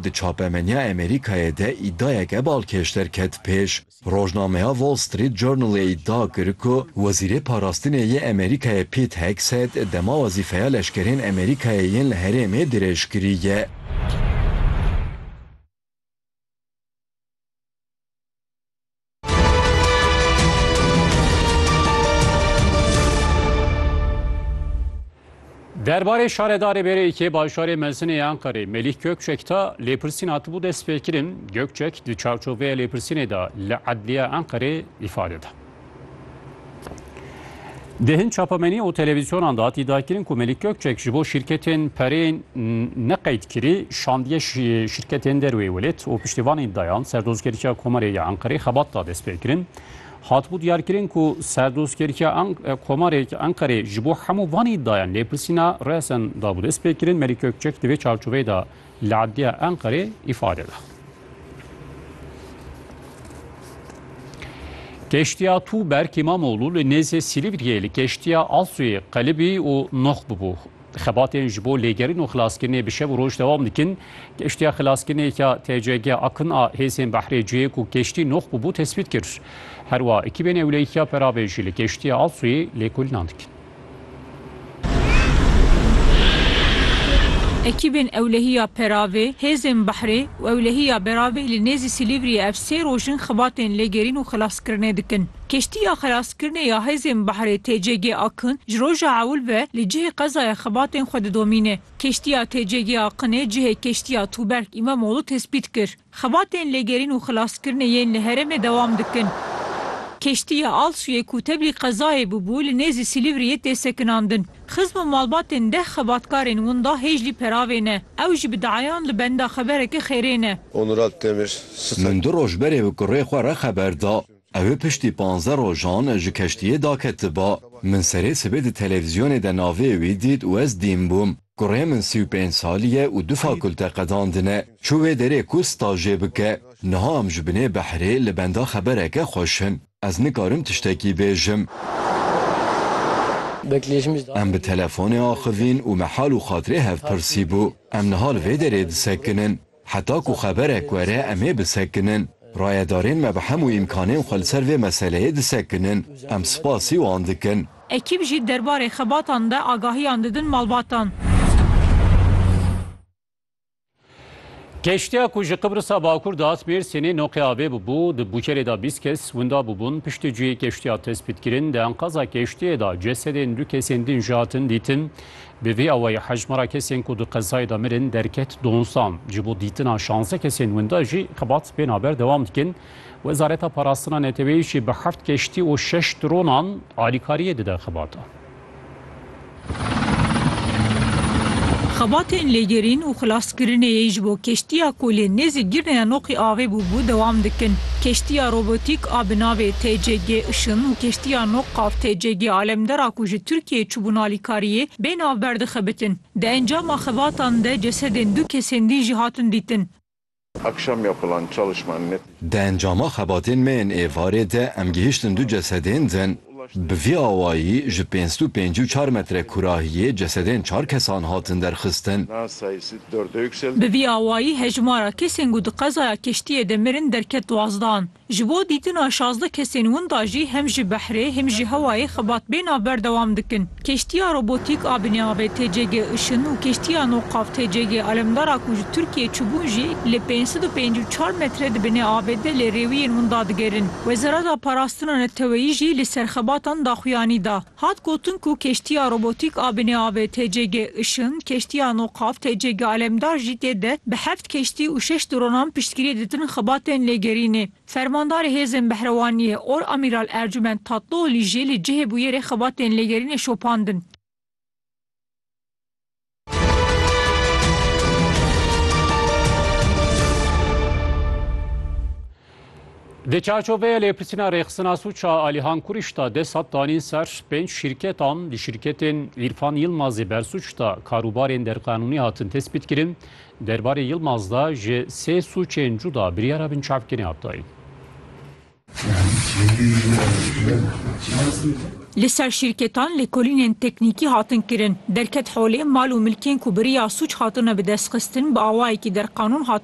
Di çapemeniya Amerîkayê de îdiayeke balkêş derket pêş. Rojnameya Wall Street Journal ê îdia kir ku Wezîrê Parastinê yê Amerîkayê Pete Hegseth dema wezîfeya leşkerên Amerîkayê yên li herêmê dirêj kiriye. Derbarê şaredarê BRY'ê bajarê Mezinê yê Anqerê Melîh Gökçek de lêpirsîn hatibû destpêkirin. Gökçek di çavçoveya lêpirsînê de li Edliya Anqerê îfade da. Di hin çapemenî û televîzyonan de hatî dakirin ku Melîk Gökçek ji bo şîrketên perê neqeydkirî şandiye şîrketên derwê welêt û piştîvanên dayan Serdozkerîya Komarê ya Enqerê xebat da destpêkirin. Hatibû diyarkirin ku Serdozkerîya Komarê ya Enqerê ji bo hemû van îdayan lêpirsîna resen dabû destpêkirin. Melîk Gökçek di vê çarçoveyê de li Edliya Enqerê îfade da. Keştiya Tuğberk İmamoğlu li nêzê Silîvriyê li keştiya Asuyê qelibî û noh bûbû. Xebatên ji bo lêgerin û xilaskirinê bi şev û roj dewam dikin. Keştiya xilaskirinê ya TCG Akın a hêzên behrê cihê ku keştî noh bûbû tesbît kir. Herwa ekîbên ewleyîkiya perabê jî li keştiya Asuyê lêkolînan dikin. Ekîbên ewlehiya Peravê, hêzên behrê û ewlehiya Beravê li nêzî Silîvriyê ev sê roj in xibatên lêgerîn û xilaskirinê dikin. Keştiya xilaskirinê ya hêzên behrê TCG Akın ji roja ewil ve li cihê qezayê xibatên xwe didomîne. Keştiya TCG Akınê cihê keştiya Tuberk Îmamoğlu tespît kir. Xebatên lêgerîn û xilaskirinê yên li herêmê dewam dikin. Keştiya Alsuyê ku tevlî qezayê bûbû li nêzî Silîvriyê tê sekinandin. Xizm û malbatên deh xebatkarên winda hêjlî peravê ne. Ew jî bi diayan li benda xebereke xêrê ne. Min du roj berê bi kurê xwe re xeber da. Ew ê piştî panzdeh rojan ji keştiyê daketiba. Min serê sibê di televîzyonê de navê wî dît û ez dîn bûm. Kurê min sî û pênc salî ye û du fakulte qedandine. Çû wê derê ku stajê bike. Niha em ji binê behrê li benda xebereke xweş in. Ez nikarim tiştekî bêjim. Em bi telefonê axivîn û me hal û xatirê hev pirsî bû. Em niha li vê derê disekinin. Heta ku xeberek were em ê bisekinin. Rayedarên me bi hemû îmkanên xwe li ser vê meseleyê disekinin. Em spasî wan dikin. Ekîb jî derbarê xebatan de agahiyan didin malbatan. Keştiya ku ji Qibrisa Bakur dihat Mêrsînê noqê avê bûbû, di bûkerê de bîst kes winda bûbûn. Piştî cihê keştiya tespîtkirin, di enqaza keştiyê de cesedên du kesên din jî hatin dîtin. Bi vî awayî hejmara kesên ku di qezayê de mirin derket donzdeh an. Ji bo dîtina şanzdeh kesên winda jî xebat bêhna ber dewam dikin. Wezareta Parastina Neteweyî jî bi heft keştî û şeş dronan alîkariyê dide xebata. Xebatên lêgerîn û xilas Kirinê yê ji bo keştiya ku lê nêzî girne ya noqî avê bûbû dewam dikin. Keştiya robotîk a bi navê TCG Işın û keştiya noq qav TCG Alemdera ku ji Tirkiyeyê çûbûn alîkariyê bê navber dixebitin. Di encama xebatan de cesedên du kesên dî jî hatin dîtin. Akşam yapılan çalışmanın Di encama xebatên me yên êvarê de em gihiştin du cesedên din. Bi vî awayî ji pênc stû pêncî û çar metre kurahiyê cesedên çar kesan hatin derxistin. Bi vî awayî hejmara kesên ku di qezaya keştiyê de mirin derket duazdan. Ji bo dîtina şazdeh kesên winda jî hem ji behrê hêm ji hewayê xebat bêhna berdewam dikin. Keştiya robotîk a binê avê TCG Işın û keştiya no qav TCG Alemdara ku ji Tirkiyeyê çûbûn jî li pênc sed û pêncî û çar metre di binê avê de lê rêwiyên winda digerin. Wezareta Parastina Neteweyî jî li ser xebatan daxuyanî da. Hat gotin ku keştiya robotîk a binê avê TCG Işın, keştiya no qav TCG Alemdar jî tê de bi heft keştî û şeş dronan piştgiriyê ditin xebatên lêgerînê. Fermandarê Hêzên Behrewaniyê Or Amîral Ercûment Tatlıoğlî jî li cihê bûyerê xebatên lêgerînê şopandin. Di çarçoveya lêpirsîna rêxistina sûca Alihan Kurîş de desat danîn ser pênc şîrketan. Di şîrketên Îrfan Yilmazê bersûc de karûbarên derqanûnî hatin tespîtkirin. Derbarê Yilmaz de ji sê sûcên cuda biryara binçavkirinê hat dayîn. Li ser şîrketan lêkolînên teknîkî hatin kirin. Derket holê mal û milkên ku bi riya sûc hatine bidestxistin bi awayekî derqanûn hatine